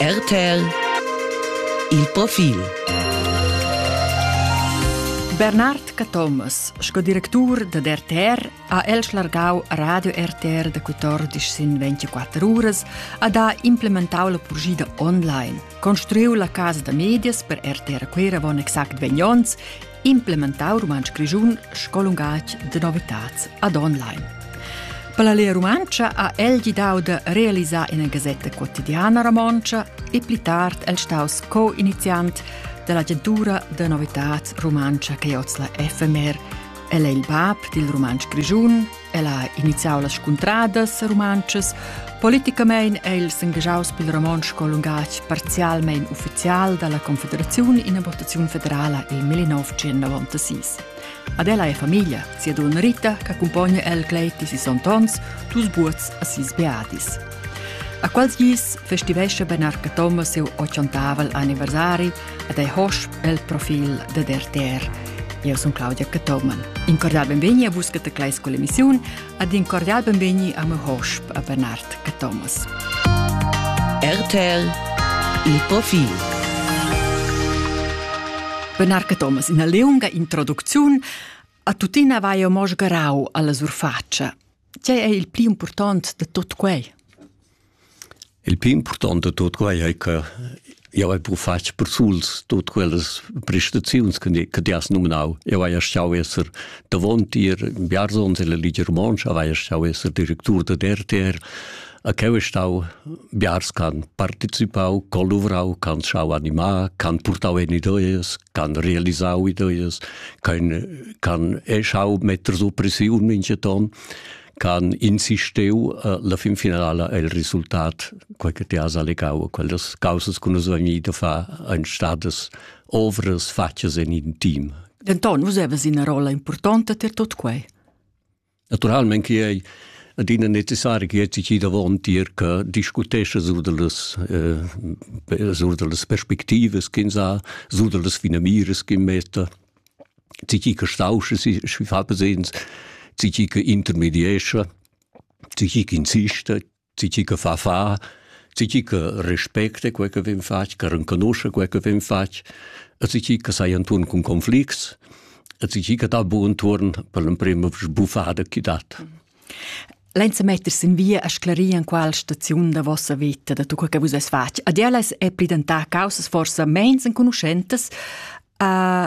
RTL Il profil Bernard Cathomas, sco directur da RTR, ha el schlargau Radio RTR da 14 sin 24 uras a da implementau la purgida online, construiu la casa da medias per RTR Queravon exact 20 onns implementau rumantsch grischun sco lungatg de novitads ad online. Per la Lia Rumantscha ha el gidau de realisar ina gasetta quotidiana romontscha e pli tard el staus co-iniziant dell'agentura de novitads rumantscha che oz la FMR. El è il bab dil rumantsch grischun El ha iniziau las scuntradas rumantschas. Politicamein è el s'engaschaus pil romontsch sco lungatg parzialmein ufficial dalla Confederaziun ina votaziun federala il 1996. Ad ella è famiglia, sia donna Rita, che accumpogna el cleit di sis ontons, dus buots a sis beadis. A quals gis festivesce Benarca Thomas seu 80 anniversari ed ei hosch el profil dad RTR. Io sun Claudia Cathoman. In cordial benvegni a vus cataclais con l'emissiun ed in cordial benvegni a me hosp a Bernard Cathomas. RTL il profil Bernard Cathomas in a leunga introducziun a tuttina vai o mos garau alla surfaccia Tgei ei il pli impurtont da tut quei? Il pli impurtont da tut quei ei che jau hai pur fatg persuls tut quellas prestaziuns che ti has numnau. Eu hai stau esser davon tier Biarzons e la Ligia Romonsch, hai stau esser directur da RTR, A cheu è stau biars ch'han participau, c'han luvrau, c'han schau animar, c'han purtau en ideas, c'han realisau ideas, c'han eh, schau metter so pressiun mincheton, c'han insistiu eh, la fin finala el resultat, quel che ti has allegau, quellas causas che nus vegnir da far ein stadas ovras fatgas en in team. Denton, vus havas ina rolla importanta per tot quei. Naturalmein che ei adina necessari che ti davon tier che discutescha sur dallas eh, sur dallas perspectivas ch'ins ha, sur dallas finamiras che metta, ti che stauscha si fa presents, ti che intermediescha, ti che insista, Tgi che fa, fa. Tgi che respecta quel che vem fatg, che renconosce quel che vem fatg, e tgi che sai enturn cun conflicts, e tgi che dà buon turn per l'emprema sbuffada che dat. Lenza meters in via a sclarir an qual staziun da vossa vita da tu che vus es fatg. Ad ellas è pridentà causas forsa mens enconuschentas, uh,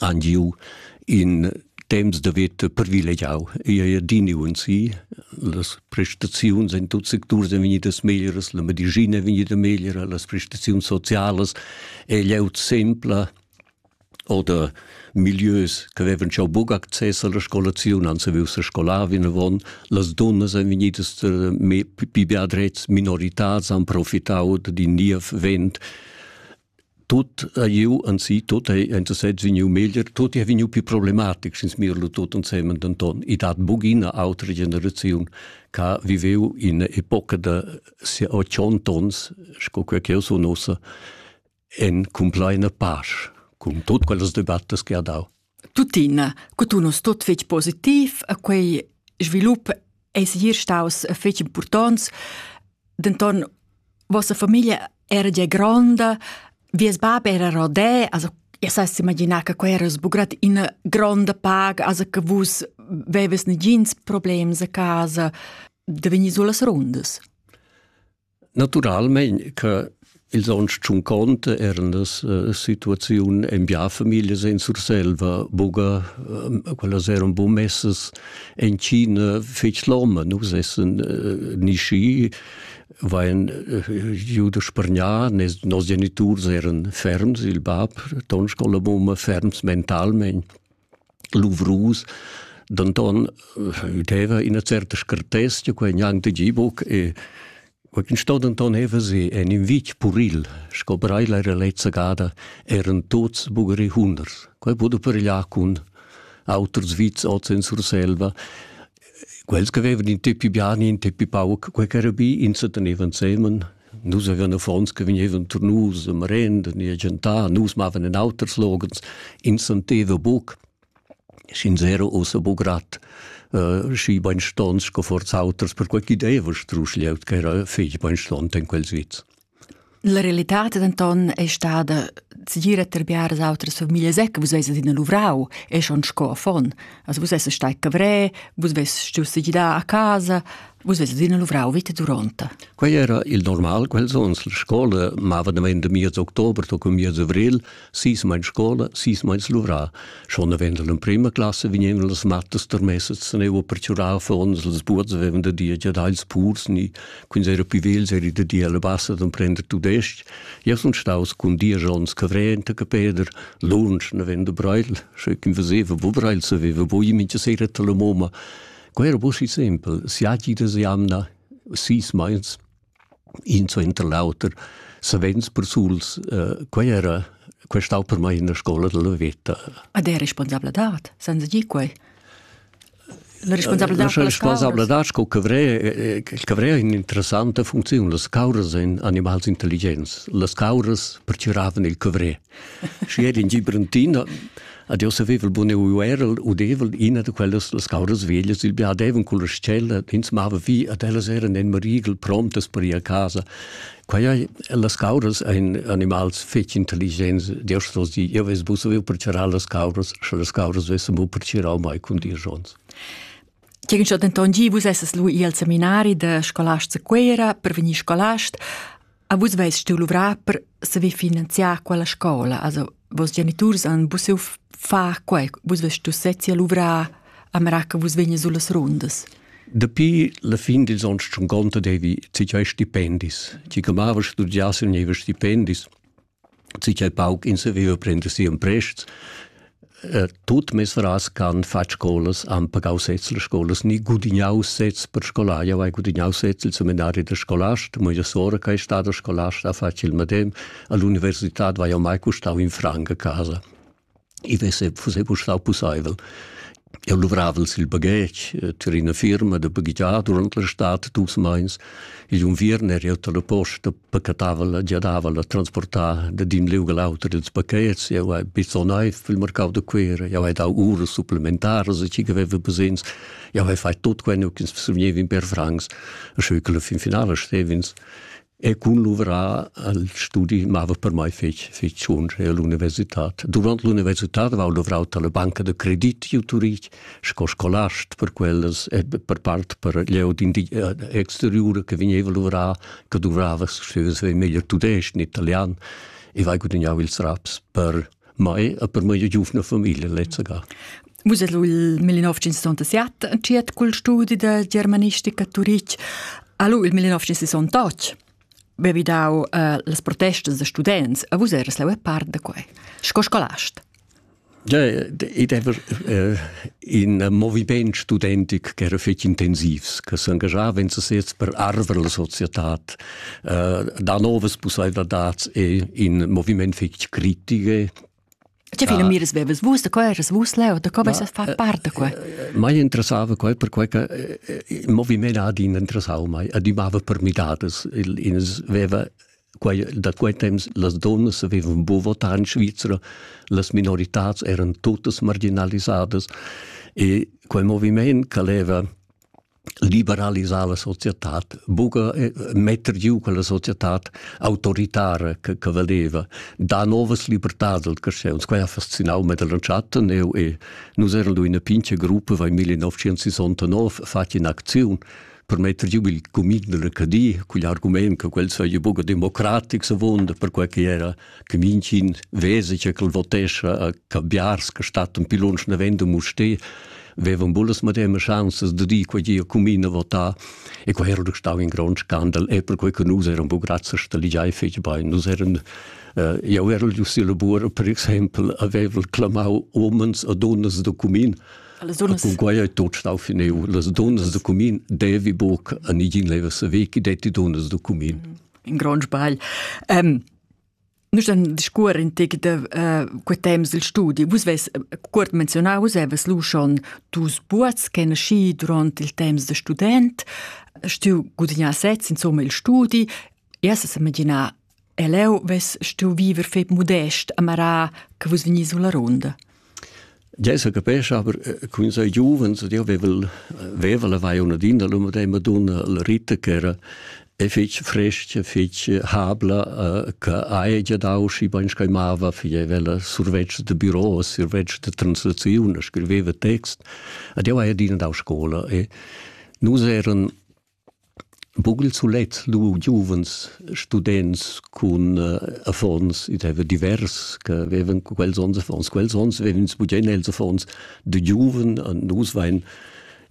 han giu in temps da veta privilegiau e ei adiniu en si. Las prestaziuns en tuts secturs ein vegnidas meglieras, la medischina è vegnida megliera, las prestaziuns socialas è glieud sempla oder milieus che avevan schon buc access alla scolaziun, han saviu se scolar vinavon. Las dunnas ein vegnidas eh, pli beadrets, minoritars, han profitau d'in niev vent Tut ha iu anzi tut ei ein sezs vegniu meglier, tut ei vegniu più problematic sin smirlu tut ensemen denton. I dat bugina autra generaziun che viveu in epoca da sia 80 ons, sco quella che io sun ossa, en compleina pace, cun tut quellas debattas che ha dau. Tuttina, cu tu non stot fetg positiv a quei svilup ei segir staus fetg impurtonts, denton vossa famiglia era gia gronda, vies bab era rodè, also Ihr seist imaginar che quei era sbugrad ina gronda paga, also che vus veves negins problems a casa, da vegnir sulas rundas. Natüralmaing che ils ons tschunconte eran las situaziun in bia famiglias in Surselva buca quellas eran buca messas in China fetg loma. Nus essan ni schi vain giu da spargnar, nos geniturs eran ferms, il bab, ton scola mumma, ferms mentalmein. luvrus, denton udeva ina certa scartezia, quei gnanc tgi buc e quei sto denton heva se en in vitg puril, sco brei la lezza gada eran tuts bugri hunders. Quei pudo peregliar cun auters vits oz en Surselva quels che avevan in teppi bien, in teppi pauc, quei che era bi, ins tenevan semen. Nus avevan affons che vegnevan tur nus a merenda ni a gentar, nus mavan in auters logens, ins senteva buc. Sch'ins era ussa buc grad uh, schi beinstons sco forz auters, per quei ch'idea strusch liaut che era fetg beinstont in quels witz. La realitad denton ei stada segira per biaras autras famiglias e che vus veses ina luvrau e schon sco affon. Also vus esses stai cavrè, vus veses stuiu segidar a casa, vus veses ina luvrau vita duronta. Quei era il normal, quels onns la scola mava damein da miez october toc cun miez avril, Sis meins scola, sis meins luvrar. Schon avend l'emprima classe vegnevano las mattas termessas, se ne avevo perciurau affons, las buots avevan da dir giadà ils purs, ni quins era più vegls eri da dir alla bassa d'emprender tudesc. Io sun staus cun diagions Cavrent e Capeder, lunsch avendo brail, sche ch'in veseva bo brail, saveva bo io mincha sera tra la momma. Quei era bo si sempel, siagi da jamna, sis meins. in suenter l'auter savens persuls uh, quai era quai stau per mai in scola della veta ad è responsabla dat senza di quai La responsabilità la responsabilità sco cavre cavre in interessanta funziun las cauras in animals intelligenz las cauras perciravan il cavre Schi ed in di Brentin ad io savevel bun eu erel udevel ina da quellas las cauras veglias, il biadevan con la stella, ins mava vi ad ellas eran en marigel promptas per ir a casa. Quai las cauras ein animals fetg intelligents, Dio sto di, io ves bu savev per charar las cauras, sche las cauras vessem bu per chirau mai cun dir jons. Tgegen schon denton gi vus esses lu i al seminari da scolast a Cuera per vegnir scolast. A vus veis tiu luvrar per saver finanziar quella scola, also vos geniturs han busiu far quei, vus veis tu sezzi a luvrar a mera che vus vegnes sulas rundas. Dapi la fin dils onns schon conta devi ti giai stipendis. Ti che mava studiar se nevi stipendis. si ch'el pauc in saveva prender si emprests, äh, tut mesras can far scolas han pagau sez las scolas ni gudignau sez per scolai, avai gudignau sez il seminari da scolast, mo io sora che è stata scolasta ha fatto il medem, all'università vai mai custau in franca a casa. I vesse, fusse bu stau pusseivel. Eu luvravel sil baghetg, eh, ter ina firma da baghegiar durant la stad dus meins. Igl unviern er eu dalla posta pacatavel, giadavel a transportar da din liug all'auter ils pachets. Eu hai bizzo naiv il mercau da Cuera, jau hai dau uras supplementaras a chi che veva bisogns. Jau hai fait tot quel, ins survgnev in per francs, e scheu che la fin finala stevins. E cun luvrar al studi mava per mai fec, fec tschunsch all'universitad. Durant l'universitad avevo luvrau per la banca da credit giu Turich, sco scolast per quellas e per part per glieud in di eh, exteriura che vegneva luvrar, che duvrava, se vevi meglio tudesc, in italian, e vai gudagnau ils raps per mai a per mai giuvna famiglia lezza ga. Vus ed il 1967 entschiet cul studi da germanistica a Turitg. Allo il 1968 bevi dau uh, las protestas da students a vus eras la part da quei. Sco scolast. Ja, ed ever uh, in moviment studentic che era fetg intensivs, che s'engagiava in sesez per arver la società, eh, da novas pussaivladads e in moviment fetg critiche, Tge fila ah. miras bevas vus, da co eras vus leu, da co veis fa part da quei? Mai interessava quei per quei che il moviment ad in interessau mai, adimava per midadas, il ins veva Quai, da quei temps las donnas avevan buca votà en Svizra, las minoritats eran totas marginalisadas e quel moviment che leva liberalisar la società, buca eh, metter giu quella società autoritara che, che valeva, da novas libertad del crescens. Quai ha fascinau me dell'entschatta neu e nus eran in una pinche gruppa vai 1969 fatg in aktion per metter giu il cumin della Cadia, quel argument che quel sei buca democratic savunda, perquei che era che mincin vese che quel votescha a Cabiars, che stat un pilons navendo musté, vevan bullas madema chanzas de dir quei gia cumin a votar e quei era stau in grond scandal e perquei che nus eram bu grazie sta ligiai fetg bein nus eran uh, jau era giu si labor per exempel avevel clamau omens a donnas de cumin Cunquai ei tot stau finiu. Las dunnas da cumin devi buc a nigin leva sa ve chi detti dunnas da cumin. In grond sbagl. Um, Nus dann discuor in tec de uh, quei temps il studi. Vus ves cuort menzionau, seves lu schon dus buats ch'en schi durant il temps de student, stiu gudignà sez insomma il studi, erst sa imaginar E leu vess stuiu viver fetg mudest a marar che vus vegnis sulla ronda. Già sa capescha, aber con sei giuvens, io vevel veva la vai una dinda l'umo de Madonna la Rita che era è fitch frestg, fitch habla, che hai già dau schi ben scaimava, fie vela survetsch de büro, survetsch de translazione, scriveva text. Ed io hai adina dau scola e nus eran Buc il sulet lu giuvens students cun affons, id haveva divers che vevan quels onns affons, quels onns vevan ins bugen els affons da giuven, nus vein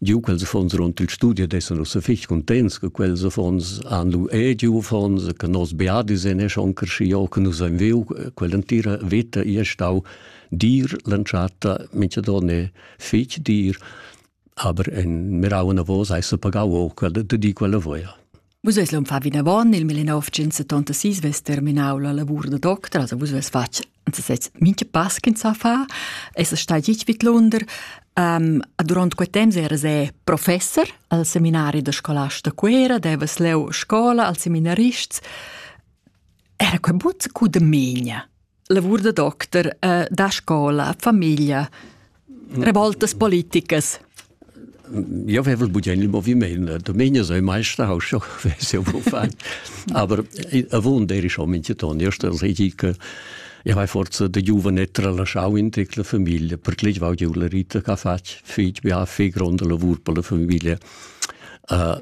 giu quels affons duront il studi ed essan ussa fich cuntents che quels affons han lu era giu affons e che nos beadis ein era schon creschiu che nus ein viu. Quell'entira veta ei stau dir l'entschatta, mintgadon è fich dir. Aber en mirau anavos hai se pagau o quella de di quella voia. Vus eis l'hom fa vinavon il 1976 ves terminau la lavur da doctor, also vus ves fatg anzi sez minche pass che sa fa, es stai gich vid Lunder. Um, durant quei temps eras e professor al seminari da scolasta Cuera, devas leu scola al seminarists. Era quei but cu de megna? lavur da docter eh, da scola, famiglia, revoltas politicas. Ja wevel bud il moviment Dominio sei meister haus fan aber a won der ich min ton erster ridikel Ja vai forza de giovane tralasciau in tecla famiglia per clei vau giu la rita ca fatg fit bia fe gronda lavur per la famiglia uh,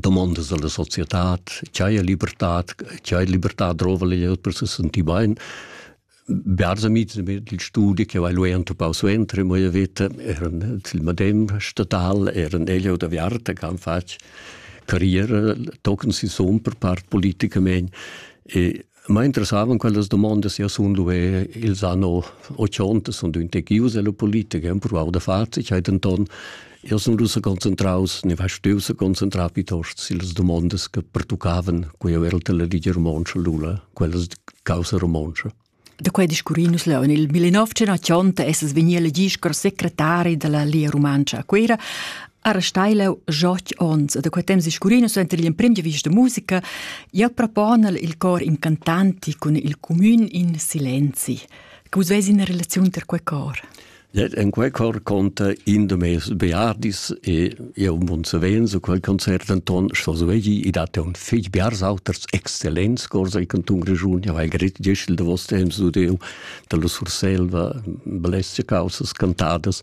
domandas alla societad, ch'haja libertad, ch'haja libertad drova glieud per se sentir bain. Bearzamit il studi che vai lui entupau suenter in vita eran il medem statal eran elio da Viarta che han fatg carriera tochen si son per part politicamente e Ma interessavan quellas domondas ja sun luvè ils anno 80 sun düntegius e lo politicher han provau da far, ich hai denton io sun rusa concentraus, ne va steu se concentrar piuttosto sulle domande che pertuccavan quei era la Liga Romontsch Lula, quellas causa romontsch. Da quei discurri nus leu in il 1980 essas vegni elegì scar secretari della Lia Romancia a Cuera, Era steilau joch ons da quei temps scurino suenter l'emprim di vista musica, ja propona il cor incantanti cun il comün in silenzi. Che vus veis in relaziun ter quei cor? En quei cor conta in de meis beardis e eu mun savenzo quel concert Anton Schoswegi i dat un fig biarsauters excellents corsa i canton Grischun ja weil grit Gischel de vos temps du deu da la Surselva blesce causas cantadas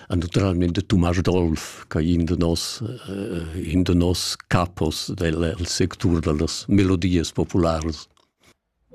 an naturalmente Tommaso Dolf, che in de nos, uh, in de nos capos del, del sectur dellas melodies populares.